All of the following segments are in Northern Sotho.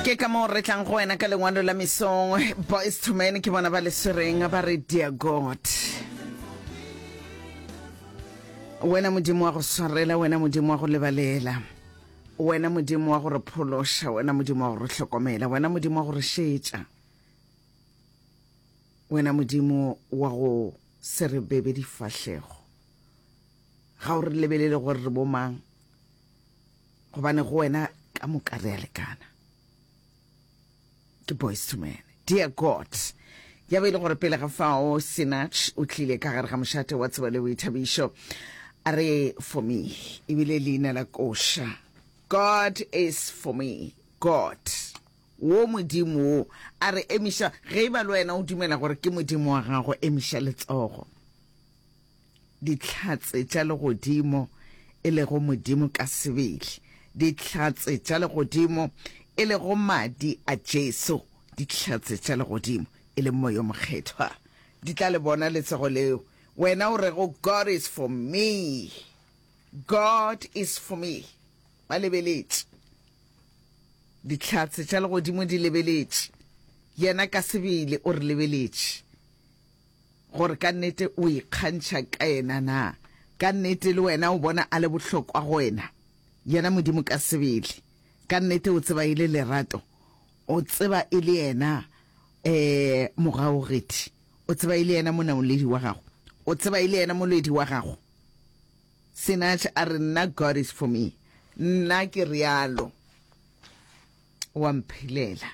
ke ka moo re tlang go wena ka lengwalo la mesong boys to men ke bona ba le swereng ba re dear god wena modimo wa go swarela wena modimo wa go lebalela wena modimo wa go re phološa wena modimo wa go re hlokomela wena modimo wa go re šetša wena modimo wa go se re bebe difahlego ga o re lebelele gore re bomang Gobane go wena ka moka re a lekana. Ke boys to men. Dear God, ya be e le gore pele ga fao Sinach o tlile ka gare ga mošate wa tsebo le boithabišo a re for me ebile leina la koša God is for me God wo modimo wo a re emiša ge e ba le wena o dumela gore ke modimo wa gago emiša letsogo Dihlatse tša legodimo, e lego Modimo ka sebele. Dihlatse tša legodimo, e lego Madi a Jesu. Dihlatse tša legodimo, e leng Moya o Mokgethwa, di tla le bona letsego leo wena o rego, God is for me, God is for me. Ba lebeletše. Dihlatse tša legodimo di lebeletše. Yena ka sebele o re lebeletše. Gore ka nnete o ikgantšha ka yena na? Ka nnete le wena o bona a le bohlokwa go wena? Yena Modimo ka sebele, ka nnete o tseba e le lerato, o tseba e le yena um mogaogedi, o tseba e le yena monaoledi wa gago, o tseba e le yena molwedi wa gago. Sinach a re, Nna, God is for me. Nna ke realo, o a mphelela.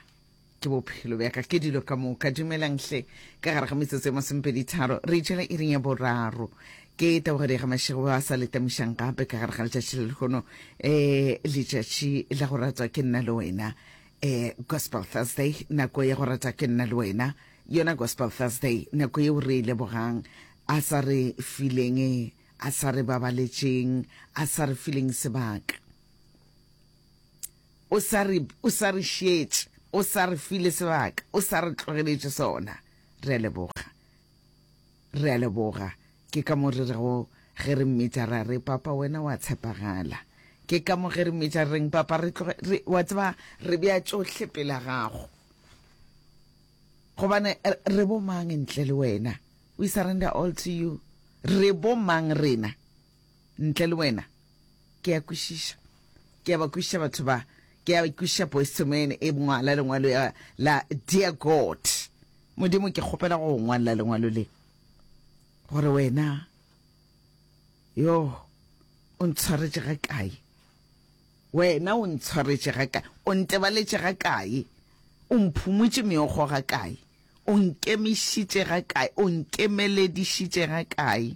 Ke bophelo bja ka, ke dilo ka moka. Dumelang hle. Ka gare ga metsotso e masomepedi-tharo, re itšela iring ya boraro. Ke Tabogedi ga Mašego ba sa le tamišang gape ka gare ga letšatši le lehono, ee, letšatši la go ratwa ke nna le wena. Ee, Gospel Thursday, nako ya go ratwa ke nna le wena. Yona Gospel Thursday, nako yeo re e lebogang A sa re fileng, A sa re babaletšeng, A sa re fileng sebaka. O sa re, O sa re šietše, O sa re file sebaka, O sa re tlogeletše sona. Re a leboga. Re a leboga. Ke ka mo re rego ge re mmitša ra re, Papa, Wena wa tshepagala. Ke ka mo ge re mmitša re reng, Papa, re tloge, re, wa tseba, re bea tšohle pela Gago. Gobane re bo mang ntle le Wena? We surrender all to You. Re bo mang rena? Ntle le wena. Ke a kwešiša. Ke a ba kwešiša batho ba. Ke a kwešiša Boyce II Man e ngwala lengwalo ya la Dear God. Modimo ke kgopela go ngwalla lengwalo le. Gore wena. Yo. O ntshwaretše ga kae. Wena o ntshwaretše ga kae. O ntebaletše ga kae. O mphumotše meokgo ga kae. O nkemišitše ga kae. O nkemeledišitše ga kae.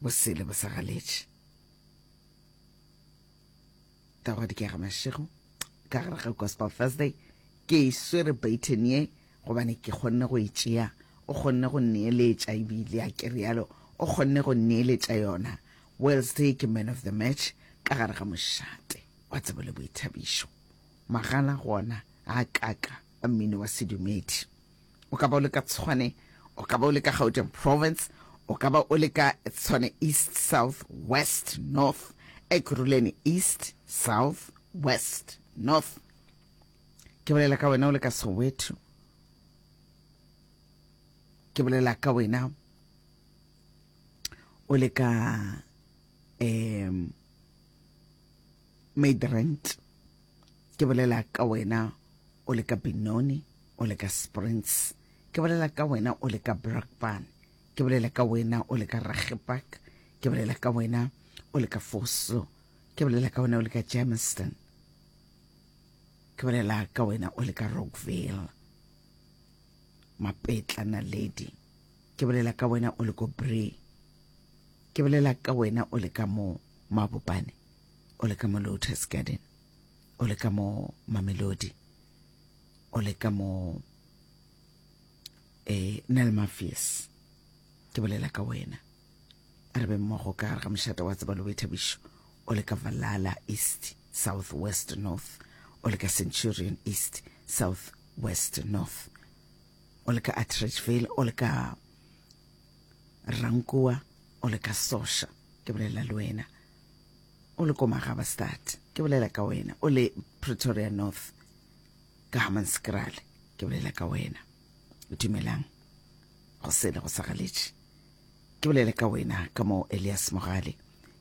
bosele bo sa galetše ka gwa dikega mašego ka gare ga gospel thursday ke e swere baton ye gobane ke kgonne go e tšea o kgonne go nneeletša ebile a ke rialo o kgonne go nneeletša yona wednesday ke man of the match ka gare ga mošate wa tsebo le boithabišo magala gona a kaka a mmino wa sedumedi o ka ba o le ka Tshwane, o ka ba o le ka Gauteng Province, o ka ba o le ka Tshwane East, South, West, North, Ekurhuleni East, South, West, North. Ke bolela ka wena o le ka Soweto. Ke bolela ka wena o le ka um Midrand. Ke bolela ka wena o le ka Benoni, o le ka Springs. Ke bolela ka wena o le ka Brakpan. Ke bolela ka wena o le ka Ragepak. Ke bolela ka wena o le ka Foso. Ke bolela ka wena o le ka Germiston. Ke bolela ka wena o le ka Rockville. Mapetla Naledi. Ke bolela ka wena o le ko Bree. Ke bolela ka wena o le ka mo Mabopane. o le ka mo lotus garden o le ka mo mamelodi o le ka mo eh nel mafies ke bolela ka wena re be mmogo ka gare ga mošata wa tseba lobe thabišo o le ka valala east south west north o le ka centurion east south west north o le ka atridgeville o le ka rankoa o le ka sosha ke bolela le wena o le ko magabastad ke bolela ka wena o le pretoria north ka hamanskrale ke bolela ka wena o dumelang go sele go sagaletše ke bolela ka wena ka mo elias mogale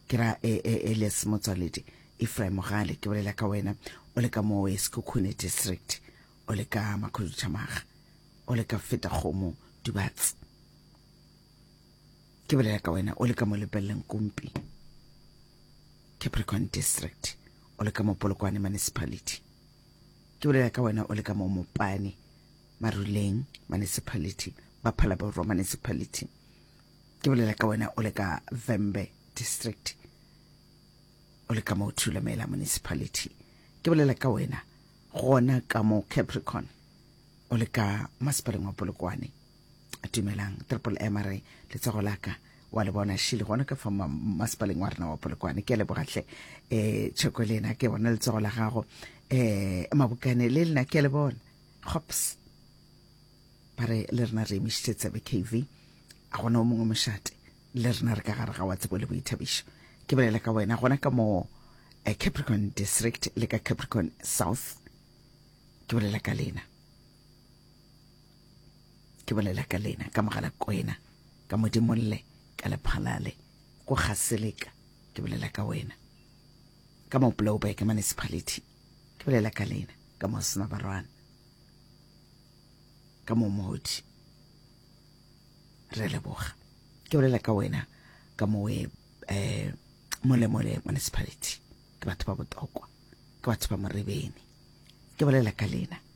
ke ra e, e, elias motswaledi efraim mogale ke bolela ka wena o le ka mo eskukune district o le ka makhudutšhamaga o le ka feta kgomo dubatse ke bolela ka wena o le ka mo lepeleleng kompi capricorn district o le ka mo polokwane municipality ke bolela ka wena o le ka mo mopane maruleng municipality baphala borwa municipality ke bolela ka wena o le ka vembe district o le ka mo thulamela municipality ke bolela ka wena gona ka mo capricorn o le ka masepaleng wa polokwane dumelang triple m a re letsogo la ka wa le bona šile gona ka fa masepaleng wa rena wa polokwane ke a lebogatlhe um eh, tšhoko le ena ke bona letsogo la gago um mabokane le lena ke a le bona gops ba re le rena re emišitše tsebe kv a gona o mongwe mošate le rena re ka gare ga wa tsebo le boithabišo ke bolela ka wena gona ka mo eh, capricorn district le ka capricorn south ke bolela ka lena ke bolela ka lena ka mogala kwena ka modimolle ka lephalale ko ga seleka ke bolela ka wena ka mo blowback municipality ke bolela ka lena ka mo sinabarwana ka mo modi re leboga ke bolela ka wena ka mo we eh molemole municipality ke batho ba botokwa ke batho ba morebeni ke bolela ka lena